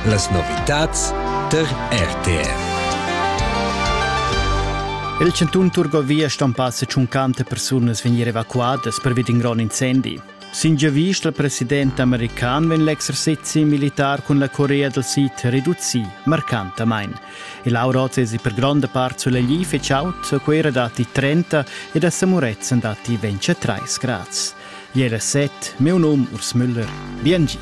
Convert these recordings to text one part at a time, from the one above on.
Las novitads tar RTV. Il cantun Turgovia stampà se 50 persunas vegnir evacuadas pervi d'in grond incendi. Sin giavist il president american vegn l'exercezi militar cun la Corea del Sid reducì marcantamain. Il Auroz es per gronda part sulegli feciaut, quei dati 30 ed a Samuretzen dati 23 grads. Jera set, meu nom Urs Müller. Biengi.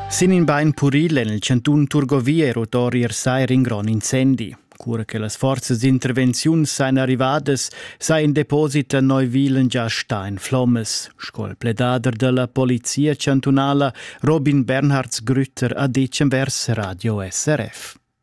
Sin in bein puril en il cantun Turgovia è rotori ier sair in grond incendi. Cura che las forzas d'intervenziun sain arrivadas, sa in deposit a Neuwilen già stein flommes, sco il pledader della Polizia chantunala Robin Bernhards Grütter ha detg vers Radio SRF.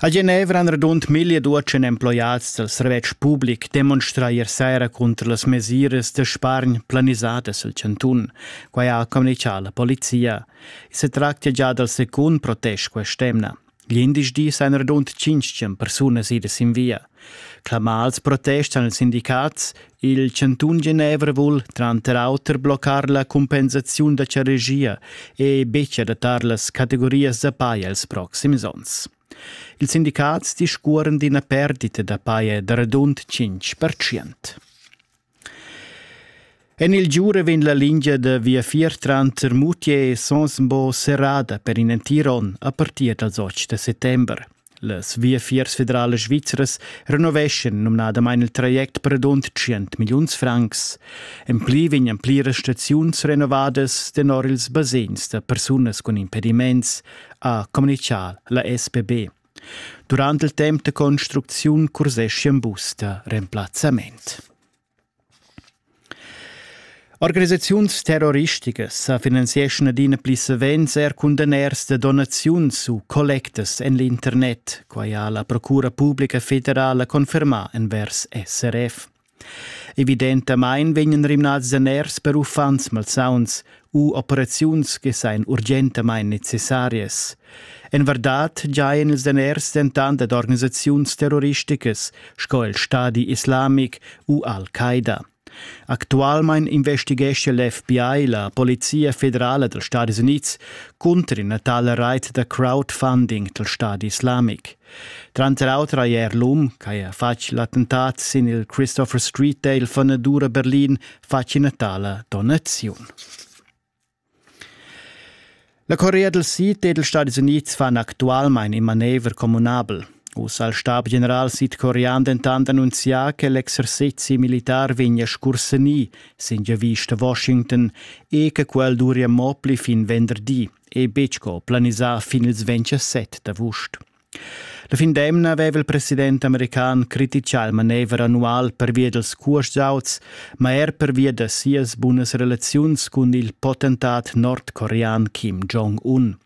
A Genevra han radund mille duatschen emploiats dal servetsch public demonstrà ier saira cunter las mesiras da spargn planisadas al chantun. Quai ha communitgà la polizia. I se tractia già dal secund protest quest'emna. Glindesdi sajan radund tschintg persunas idas in via. Clamals protestan ils sindicats. Il chantun Genevra vul tranter auter bloccar la compensaziun da charegia e betg adattar las categorias da paja els proxims onns. Ils sindicats discuoran d'ina perdita da paja da radund 5%. En il Giura vegn la lingia da viafier tranter Moutier e Sonsbo serrada per in entir onn a partir dals 8 da settember. Las viafiers federalas svizras renoveschan numnadamain il traject per rund 100 milliuns francs. En pli vegnan pliras staziuns renovadas tenor ils basegns da persunas cun impediments, ha communitgà la SPB. Durant il temp da construcziun curseschan bus da remplazzament. Organisaziuns terroristicas sa finanzieschan adina pli savens er cun daners da donaziuns u collectas en l'internet, quai ha la Procura publica federala confermà envers SRF. Evidentamain vegnan rimnads daners per uffants malsauns u operaziuns che sajan urgentamain necessarias. En vardad giajan ils daners dentant ad organisaziuns terroristicas sco il Stadi islamic u Al-Qaida. Actualmain investighescha l'FBI, la Polizia federala dals Stadis Unids, cunter ina tala reit da crowdfunding dal Stadi islamic. Tranter auter hai er l'um ch'haja fatg l'attentat sin il Christopher Street Dale fanadura Berlin fatg ina tala donaziun. La Corea del Sid ed ils Stati Unids fan actualmein in manever communabel. Uss ha il stabgeneral sidcorean dentant annunzià che l'exercizi militar vegnia scursenì sin giavista Washington e che quel duria mo pli fin venderdi. e betg co planisar fin ils 27 d'avust. La fin d'emna aveva il president american criticà il manever annual pervia dels cursauts, ma er pervia da sias bunas relaziuns cun il potentat nordcorean Kim Jong-un.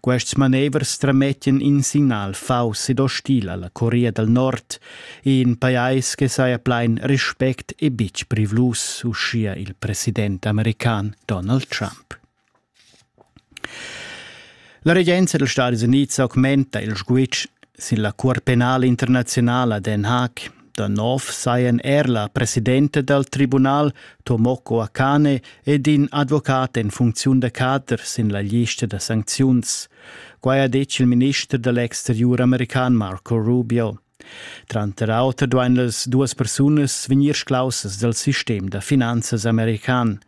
Quests manevers tramettan in signal faus ed ostil alla Corea del Nord, in pajais che saja plein respect e bitg privlus, uschia il president american Donald Trump. La regenza dals Stadis Unids augmenta il sguitg sin la Cuort penala internaziunala Den Haag. Da nov sajan er la presidenta dal tribunal Tomoko Akane ed in advocat en funcziun da cader sin la lista da sancziuns. Quai ha detg il minister da l'exteriur american Marco Rubio. Tranter auter duain las duas persunas vegnir sclaussas dal sistem da finanzas american.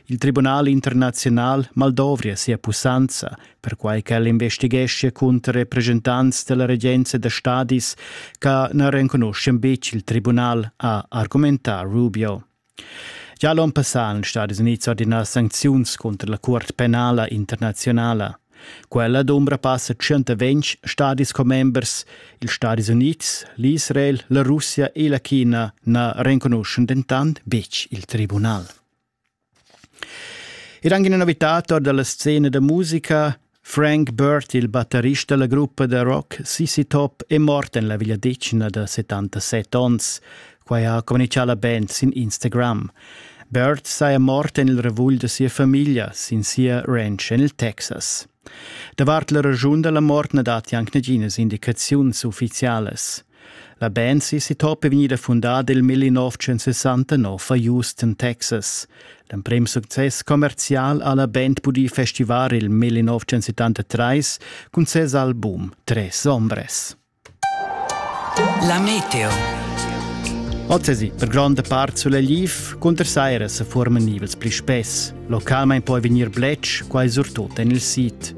Il Tribunal internaziunal maldovria sia pussanza, perquai ch'el investigheschia cunter represchentants della regenza da stadis che na renconuschian betg il tribunal, ha argumentà Rubio. Gia l'on passà han Stadis Unids ordinà sancziuns cunter la Cuort penala internaziunala. Quella d'ombra passa 120 stadis commembers. Ils Stadis Unids, l'Israel, la Russia e la China na renconuschan dentant betg il tribunal. Ed anche una novità tor dalla scena da musica. Frank Burt, il batterist dalla gruppa da rock Sissy Top, è mort en la vegliadetgna da 77 onns. Quai ha communicà la band sin Instagram. Burt saja mort en il revugl da sia famiglia sin sia ranch en il Texas. Davart la raschun da la mort na datti anc naginas indicaziuns uffizialas. La band si sitopa vegnida fundada il 1969 a Houston, Texas. L'emprim success commercial ha la band pudì festivar il 1973 cun ses album Tres Ombres. La meteo. Ozzesi, per gronda part sulla Liv, cunter Saira se formen nivels pli spess. Localmente puoi venir bletsch, quai surtut en il sit.